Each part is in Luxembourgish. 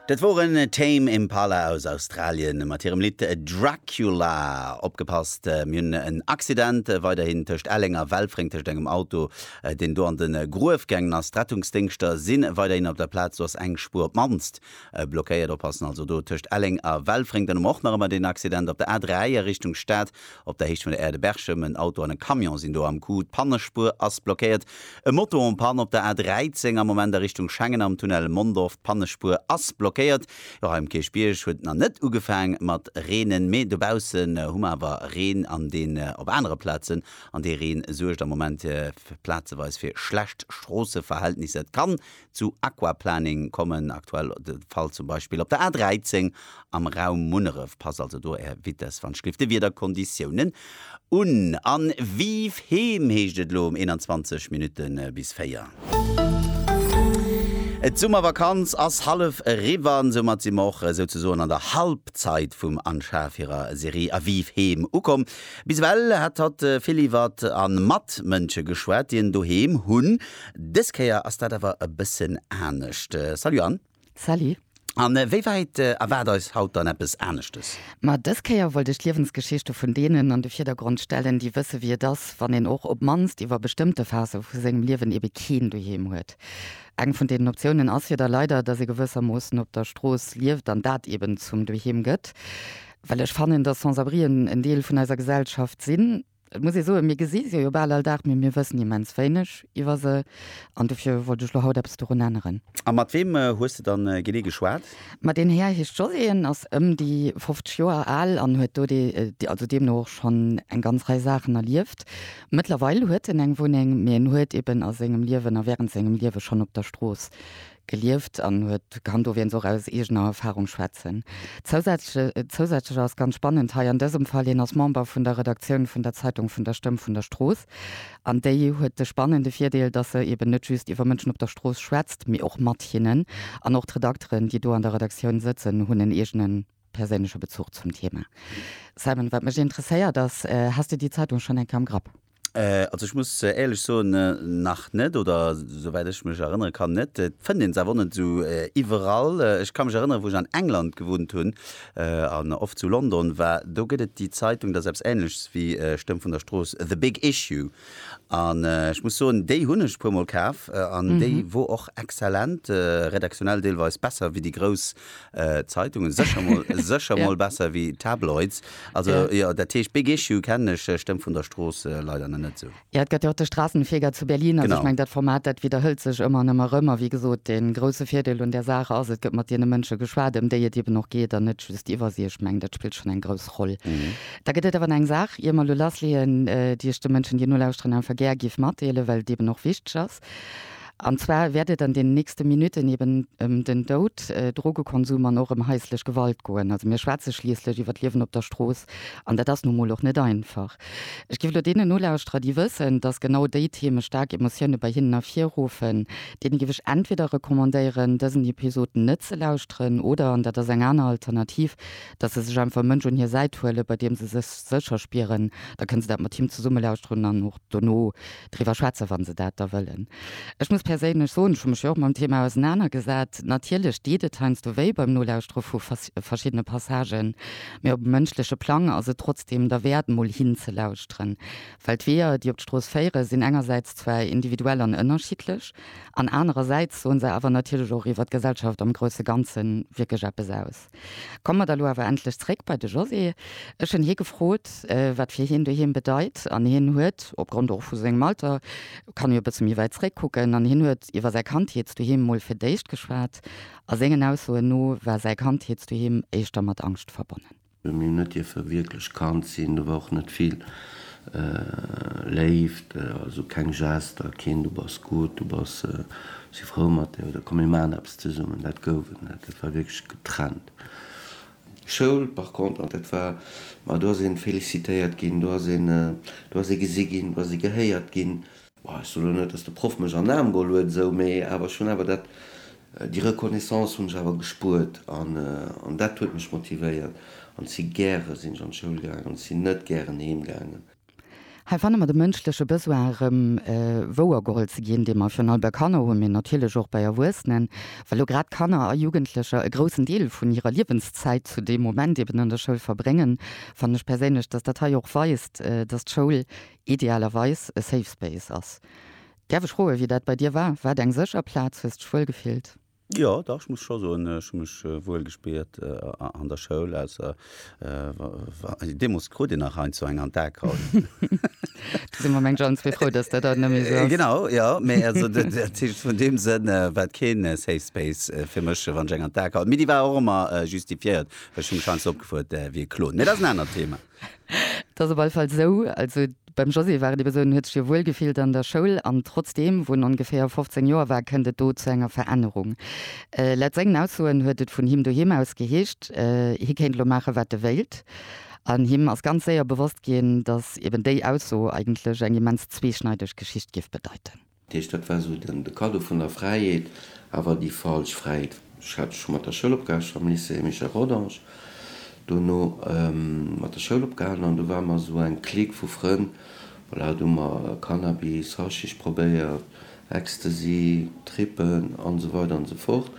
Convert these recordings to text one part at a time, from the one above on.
Dat woren Tame Impala aus Australien mat hirem Lidd Dracula. Opgepasst, mir hunn en Accident weiderhin tëscht Elleng a Welfréng tëscht engem Auto deen do an de Gruef gaangen ass. D'Rettungsdéngschter si weiderhin op der Plaz, do ass eng Spuer op mannst blockéiert. Oppassen also do tëscht Elleng a Welfréng. Dann hu mer och nach ëmmer deen Accident op der A3 a Richtung Stad Op der Héicht vun der Aire de Berchem, en Auto an e Camion sinn do am Coup, d'Pannespuer ass blockéiert. E Moto en panne op der A 13 am Moment a Richtung Schengen am Tunnel Mondorf, d'Pannespuer ass blockéiert. Jo, hei um Kierchbierg huet et nach net ugefaang mat reenen, mee dobaussen hu mer awer Reen an deen op anere Plazen an dee Reen suergt am Moment plazeweis fir schlecht Stroosseverhältnisser. Et kann zu Aquaplaning kommen aktuell de Fall zum Beispill op der A 13 am Raum Munneref. Passt also do Är Vitess wann Schliff de Wiederkonditiounen un an Vive Heem heescht et elo um 21 Minutte bis 4. D'Summervakanz ass hallef eriwwer an soumat si mer och souzesoen an der Halbzeit vum Anschaf hirer Serie A Vive Heem ukomm. Bis ewell hat hatt vill iwwert an mat Mënsche geschwat, déi en Doheem hunn, Dës Kéier ass dat awer e bëssen anescht. Salut Anne. Salut. A wéi wäit erwaart eis haut dann eppes aneschtes? Ma dës Kéier wollt ech d'Liewensgeschichte vun deenen an de Virdergrond stellen, déi wësse wéi et ass, wann een och op d'mannst iwwer bestëmmte Phase vu sengem Liewen ebe keen Doheem huet. Eng vun deenen Optiounen ass jo da leider, dass ee gewëssermoossen op der Strooss lieft an dat eben zum Doheem gëtt. Well ech fannen, dass Sans-abrien en Deel vun eiser Gesellschaft sinn. Et muss ee soen, mir gesi se jo bal all Dag, mee mir wëssen immens wéineg iwwer se an dofir wollt ech elo haut eppes dorun änneren. A mat weem hues de dann genee geschwat? Ma deen Här heescht José, en ass ëm déi 50 Joer al an huet do also deemno och schonn eng ganz Rei Saachen erlieft. Mëttlerweil huet en eng Wunneng, mee en huet eben a sengem Liewen a wärend sengem Liewe schonn op der Strooss gelieft an huet kann dowéinst och aus eegener Erfahrung schwätzen. Zousätzlech, zousätzlech ass ganz spannend hei an dësem Fall, hien ass Member vun der Redaktioun vun der Zeitung vun der Stëmm vun der Strooss an déi huet de spannende Virdeel, dass se eben net just iwwer Mënschen op der Strooss schwätzt, mee och mat hinnen an och d'Redakteren, déi do an der Redaktioun sëtzen, hunn en eegene perséinleche Bezuch zum Thema. Simon, wat mech interesséiert ass, Has de déi Zeitung schonn eng Kéier am Grapp? Also ech muss éierlech soen, nach net, oder souwäit ech mech erënnere kann, net. Et fënnt een se awer och net esou iwwerall. Ech ka mech erënneren, wou ech an England gewunnt hunn an oft zu London war, do gëtt et déi Zeitung, dat ass eppes Änleches wéi Stëmm vun der Strooss, The Big Issue. An ech muss soen, déi hunn ech e puermol kaf an déi wor och exzellent, redaktionell deelweis besser wéi déi grouss Zeitungen secher mol secher mol besser wéi Tabloids also jo dat heescht Big Issue kennen ech stëmmt vun der Strooss leider nach net sou. Jo et gëtt jo och de Straßenfeger zu Berlin also ech mengen dat Format dat widderhëlt sech ëmmer an ëmmer erëm a wéi gesot dee grousse Virdeel un där Saach ass et gëtt mat deene Mënsche geschwat ëm déi et eben och geet an net just iwwer si ech mengen dat spillt schonn eng grouss Roll. Da gëtt et awer nach eng Saach ier mer elo lassleeën déi ech de Mënschen déi nolauschteren einfach gär giff matdeelen well et eben och wichteg ass. An zwar wäert et an den nächste Minutten eben ëm den Doud, Drogekonsum an och ëm haislech Gewalt goen. Also mir schwätze schliisslech iwwer d'Liewen op der Strooss an dat ass nu mol och net einfach. Ech géif elo deenen Nolauschterer, déi wëssen, datt genau déi Theme staark Emotioune bei hinnen ervirruffen, deene géif ech entweder recommandéieren, dësen Episod net ze lauschteren oder, an dat ass eng aner Alternativ, datt se sech einfach e Mënsch un hir Säit huelen, bei deem se sech sécher spieren. Da kënne se dat mat him zesumme lauschteren an och dono. driwwer schwätzen, wa se dat da wëllen. Ech muss perséinlech soen, ech hu mech jo och mam Thema ausenanergesat, natierlech deet et heiansdo wéi beim Nolauschtere vu verschiddene Passagen, mä op e mënschleche Plang ass et trotzdem derwäert, mol hinzelauschteren, well d'Weeër, déi op d'Strooss féieren, sinn engersäits zwar individuell an ënnerschiddlech an anerersäits soen se awer natierlech och iwwer d'Gesellschaft am grousse Ganze wierklech eppes aus. Komme mer da lo awer endlech zréck bei de José. Ech hunn hie gefrot, wat fir hien doheem bedeit, an hien huet, opgrond och vu sengem Alter, kann jo e bësse méi wäit zréckkucken, an hien huet iwwer säi Kandheetsdoheem mol fir d'éischt geschwat. A sengen Aussoen no war säi Kandheetsdoheem éischter mat Angscht verbonnen. Mir hunn net dierfe wierklech Kand sinn, do war och net vill Léift, also keng Gester, keen du bass gutt, du bass, si frou mat där, oder komm mir maachen eppes. Zesummen, dat gouf et net. Et war wierklech getrennt. Schoul par contre, dat war, ma do ass ee félicitéiert ginn, do ass een, do ass ee gesi ginn, do ass ee gehéiert ginn. Bon, ech soe lo net, dass de Proff mech an den Aarm geholl huet esou, mee awer ech hunn awer dat, déi Reconnaissance hunn ech awer gespuert an, an dat huet mech motivéiert. An si gäre sinn ech an d'Schoul gaangen an si net gären heem gaangen. Hei fanne mer de mënschleche Besoin erëm wouergeholl ze ginn, dee mer virun allem bei Kanner hunn, mee natierlech och bei Erwuessenen, well elo grad Kanner a Jugendlecher e groussen Deel vun hirer Liewenszäit zu deem Moment eben an der Schoul verbréngen, fannen ech perséinlech, dass dat hei och weist, dass d'Schoul idealerweis e Safe Space ass. Däerf ech froen, wéi dat bei dir war? War et eng sécher Plaz? Hues de dech wuel gefillt? Jo, dach, ech muss scho soen, ech hu mech wuel gespiert an der Schoul, ausser deemols krut een nach hei zu enger an d'Akraut. Do si mer mengt alle zwee frou, dass dat haut net méi esou ass. Genau, jo, mee also dat heescht, vun deem Sënn war et keen safe space fir mech, wann ech eng an d'Akraut. Mee déi war och ëmmer justifiéiert, well ech hu mech heiansdo opgefuert wéi e Klon. Mee dat ass en anert Thema. Et ass op alle Fall esou, also beim José war et eben esou, en huet sech jo wuel gefillt an der Schoul, an trotzdeem, wou en ongeféier 15 Joer war, kënnt et do zu enger Verännerung. Laut sengen Aussoen huet et vun him doheem aus geheescht, hie kéint elo maache wat e wéilt, an him ass ganz séier bewosst ginn, datt eben déi Ausso eigentlech eng immens zweeschneideg Geschicht géif bedeiten. Dat heescht, dat war esou de Cadeau vun der Fräiheet, awer déi falsch Fräiheet. Ech hat scho mat der Schoul opgehale, am Lycée Michel Rodange, dono mat der Schoul opgehalen an do ware mer esou eng Clique vu Frënn, voilà, do hu mer Cannabis, Haschisch probéiert, Ecstasy, Trippen an esou weider an esou fort.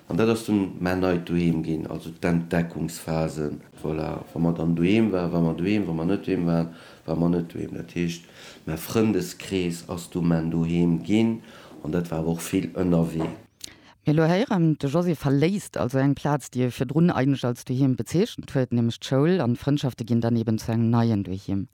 An dat ass dunn mäin neit Doheem ginn, also d'Entdeckungsphase. Voilà, wa mer dann doheem waren, ware mer doheem, wa mer net doheem waren, War mer net doheem. Dat heescht, mä Frëndeskrees ass du men doheem ginn an dat war awer och vill ënnerwee. Mee elo héiere mer, de José verléisst also eng Plaz, déi e virdrun eigentlech als Doheem bezeechent huet, nämlech d'Schoul, an d'Frëndschafte ginn dann eben zu engem neien Doheem.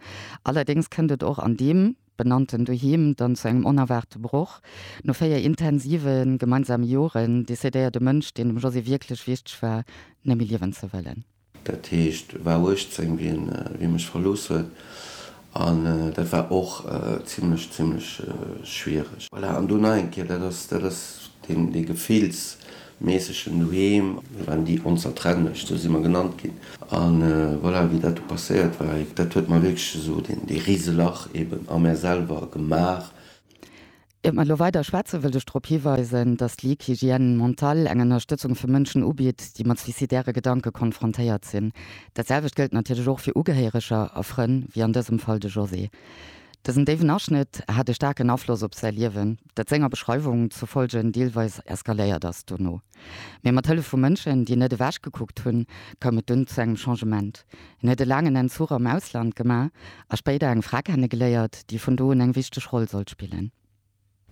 Allerdéngs kënnt et och an deem benannten Doheem dann zu engem onerwaarte Broch. No véier intensive gemeinsame Joren decidéiert e Mënsch, deen dem José wierklech wichteg war, net méi liewen ze wëllen. Dat heescht, war 18 wien wien mech verlooss huet an dat war och zimlech zimlech schwiereg. Voilà, an do nach eng Kéier, dat ass dat ass deen dee gefillsméissegen Doheem. Mir waren déi Onzertrennlech, sou si mer genannt ginn an voilà, wéi dat du passéiert war, dat huet mer wierklech esou dee Riselach eben a mär selwer gemaach. Ier mer elo weider schwätzen, wëllt ech drop hiweisen, dass d'Ligue Hygiène Mentale eng Ënnerstëtzung fir Mënschen ubitt, déi mat suizidäre Gedanke konfrontéiert sinn. Dat selwecht gëllt natierlech och fir Ugehéireger a Frënn, wéi an dësem Fall de José. Dësen déiwen Aschnëtt hat e staarken Afloss op säi Liewen, dat senger Beschreiwung zufolge deelweis eskaléiert ass dono. Mee mat Hëllef vu Mënschen, déi net ewech gekuckt hunn, koum et dunn zu engem Changement. Hien huet e laangen Entzuch am Ausland gemaach a spéider eng Fra kennegeléiert, déi vun do un eng wichteg Roll sollt spillen.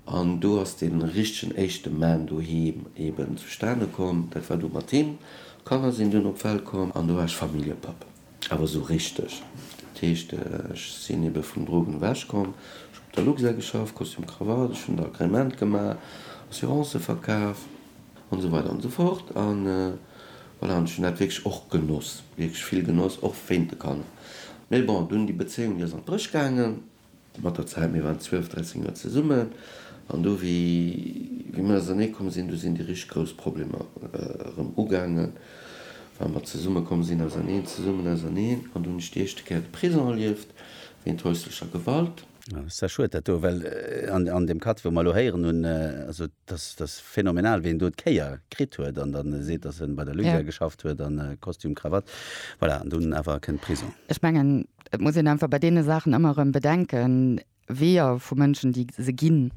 An do ass dee richtegen éischte Mann doheem eben zustane komm. Dat war du mat him. D'Kanner sinn dunn op d'Welt komm an do war ech Familljepapp. Awer esou richteg. Dat heescht, ech sinn ebe vum Drogen ewech komm. Ech hunn op der Luxair geschafft, Kostüm, Krawatt, ech hunn d'Agrément gemaach, Assurancë verkaf an esou weider an esou fort. An voilà, an ech hunn dat wierklech och genoss, wierklech vill genoss, och wéint de Kanner. Mee bon, dunn déi Bezéiung, déi ass an d'Bréch gaangen. Mat der Zäit, mir waren 12, 13 Joer zesummen, an do, wéi mir ausernee komm sinn, do sinn déi richteg grouss Problemer erëm ugaangen, well mer zesumme komm sinn, auserneen, zesummen, auserneen, an do hunn ech déi éischte Kéier de Prisong erlieft, wéint häuslecher Gewalt. Ah, ça schued dat do, well an deem Katt, wou mer elo héieren hunn, also dass, dass phänomenal, wéi en do d'Kéier kritt huet an dann seet, dass en bei der Luja geschafft huet an Kostüm, Krawatt, voilà, an dunn awer kënnt Prisong. Ech mengen, Et muss een einfach bei deene Saachen ëmmer erëm bedenken, Weeër vu Mënschen, déi se ginn,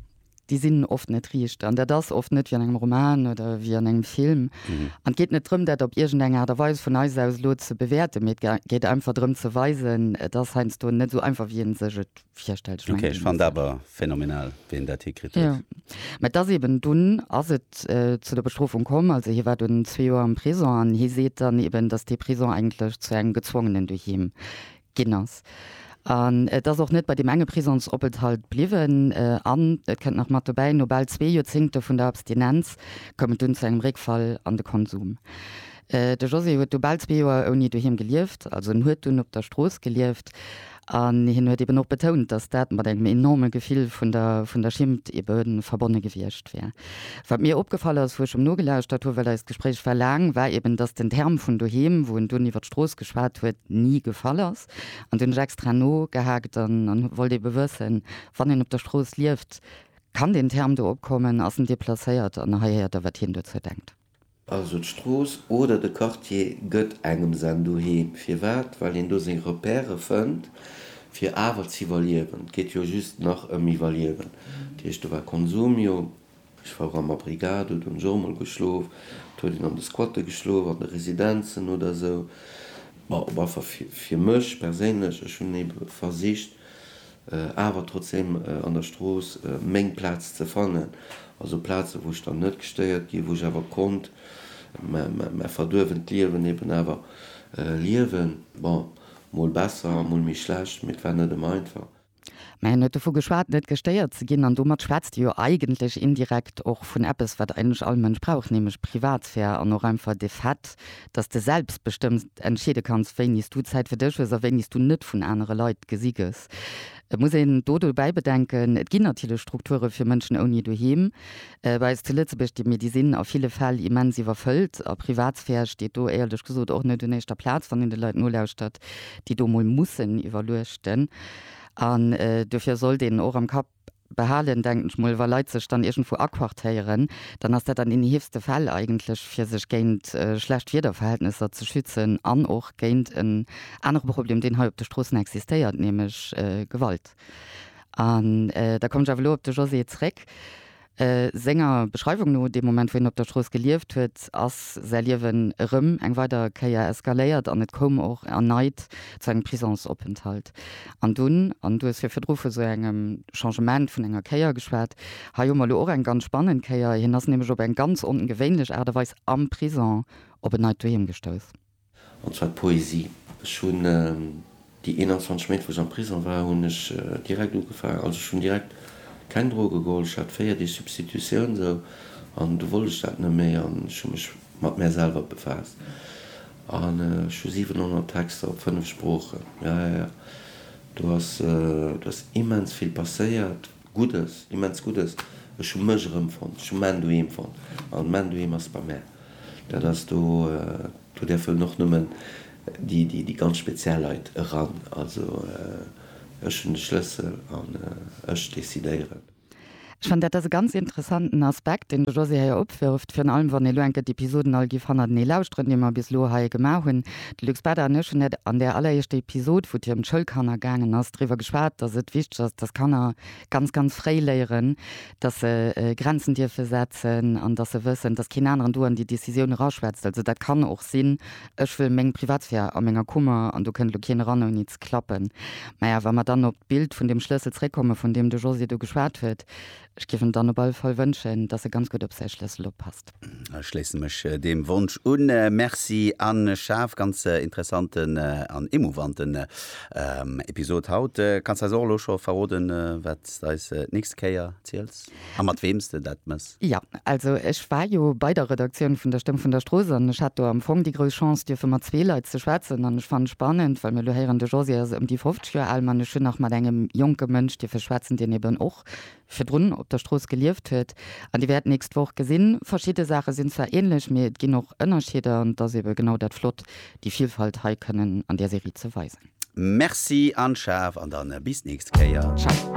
déi sinn oft net riicht. An dat ass oft net wéi an engem Roman oder wéi an engem Film. An et geet net drëm, dat op iergendeng Aart a Weis vun eis aus elo ze bewäerten, mee et geet einfach drëm ze weisen, et ass heiansdo net esou einfach, wéi ee sech et Ok, ech fand awer phänomenal wéi en dat hikritt huet. Jo, mä et ass eben, dunn ass et zu der Bestrofung komm, also hie war dunn zwee Joer am Prisong an hie seet dann eben, datt dee Prisong eigentlech zu engem gezwongenen Doheem ginn ass. An et ass och net bei deem enge Prisongsopenthalt bliwwen an et kënnt nach mat dobäi, no bal zwee Joerzéngte vun der Abstinenz koum et dunn zu engem Réckfall an de Konsum. De José huet du bal zwee Joer ouni Doheem gelieft, also en huet dunn op der Strooss gelieft. An hien huet eben och betount, datt dat mat engem enorme Gefill vun der, vun der Schimmt ebe verbonne gewiescht wär. Wat mir opgefall ass, wou ech em nogelauschert hu, well eist Gespréich war laang, war eben, datt den Term vun doheem, wou en dunn iwwer d'Strooss geschwat huet, ni gefall ass. An do hunn ech extra nogehaakt an wollt ebe wëssen, wann een op der Strooss lieft, kann deen Term do opkommen, ass en deplacéiert? An hei héiert Der, wat hien dozou denkt. Also d'Strooss oder de Quartier gëtt engem sen Doheem. Firwat? Well een do seng Repèrë fënnt, fir awer z'iwwerliewen. Et geet jo just nach ëm Iwwerliewen. Dat heescht, do war Konsumio, ech war och am Abrigado, do hunn ech och emol geschlof, et huet een an de Squatte geschlof, an de Residenzen oder esou. Bon, op alle Fall fir mech perséinlech, ech hunn ebe versicht, awer trotzdem an der Strooss meng Plaz ze fannen, also Plazen, wou ech dann net gestéiert ginn, wou ech awer konnt mäi verduerwent Liewen eben awer liewen. Bon, mol besser, mol méi schlecht, mee et war net ëmmer einfach. Mä hien huet dovu geschwat, net gestéiert ze ginn, an domat schwätzt e jo eigentlech indirekt och vun eppes, wat eigentlech all Mënsch brauch, nämlech Privatsphär an och einfach de Fait, dass de selbstbestëmmt entscheede kanns, wéini s du Zäit fir dech hues a wéini s du net vun anere Leit gesi gëss. Et muss een do dobäi bedenken, et ginn natierlech Strukture fir Mënschen ouni Doheem. Bei eis zu Lëtzebuerg, déi mir, déi sinn a ville Fäll immens iwwerfëllt a Privatsphär steet do éierlech gesot och net un éischter Plaz, wann een de Leit nolauschtert, déi do mol mussen iwwerluechten. An dofir sollt een och am Kapp. behalen, denken ech mol. Wa Leit sech dann iergendwou aquartéieren, dann ass dat an deene heefste Fäll eigentlech, fir sech géint schlecht Wiederverhältnesser ze schützen an och géint en anere Problem, deen hei op de Stroossen existéiert, nämlech Gewalt. An da kommen ech awer elo op de Josée zréck. Senger Beschreiwung no, dee Moment, wou hien op der Strooss gelieft huet, ass säi Liewen erëm eng weider Kéier eskaléiert an et koum och erneit zu engem Prisongsopenthalt. An dunn, an du hues fir virdru vu sou engem Changement vun enger Kéier geschwat, hei hu mer elo och eng ganz spannend Kéier, hien ass nämlech op eng ganz ongewéinlech Aart a Weis am Prisong op en neit Doheem gestouss. An zwar d'Poesie. Ech hunn déi 21 Méint, wou ech am Prisong war, hunn ech direkt ugefaangen. Also ech hunn direkt keng Droge geholl. Ech hat véier Deeg Substitutioun esou an du wollt ech dat net méi an ech hu mech mat mär selwer befaasst. An ech hu 700 Texter op fënnef Sproochen. Jo, jo, jo. Do ass, do ass immens vill passéiert. Guddes, immens Guddes. Ech hu mech erëmfonnt, ech hu mäin Doheem fonnt. An mäin Doheem ass bei mär. Dat ass do, do däerfen och nëmmen déi ganz speziell Leit eran. Also ech hunn de Schlëssel an ech decidéieren. Ech fannen, dat ass e ganz interessanten Aspekt, deen de Josy hei opwërft, virun allem wann ee lo enk gëtt, d'Episoden all géif hannertenee lauschteren, déi mer bis elo hei gemaach hunn. De Luc Spade an ech hunn dat an där alleréischter Episod, wou et hier ëm d'Schoulkanner gaangen ass, driwwer geschwat, dass et wichteg ass, dass Kanner ganz, ganz fréi léieren, dass se Grenzen dierfe setzen an dass se wëssen, dass keen aneren do an déi Décisioun eraschwätzt. Also dat kann och sinn, ech wëll meng Privatsphär a menger Kummer an do kënnt elo keen eran ouni ze klappen. Mä wa mer dann op d'Bild vun deem Schlëssel zréckkomme vun deem de Josy do geschwat huet, Ech géif em dann op alle Fall wënschen, dass e ganz gutt op säi Schlëssel oppasst. Ech schléisse mech deem Wonsch un. Merci Anne Schaaf, ganz interessanten an émouvanten Episod haut. Kanns eis och elo scho verroden, wat s de eis d'nächst Kéier ziels a mat weem s de dat mëss? Jo, also ech war jo bei der Redaktioun vun der Stëmm vun der Strooss an ech hat do am Fong déi grouss Chance, dierfe mat zwee Leit ze schwätzen. An ech fannen spannend, well mir elo héieren, de Josy ass ëm déi 50 Joer al, mä ech hunn nach mat engem jonke Mënsch dierfe schwätzen, deen eben och virdrun op der Strooss gelieft huet an Dir wäert d'nächst Woch gesinn, verschidde Saache sinn zwar ähnlech, mee et ginn och Ënnerscheeder an et ass eebe genau dat flott, déi Vielfalt hei kënnen an där Serie ze weisen. Merci Anne-Charve an dann bis d'nächst Kéier. Ciao.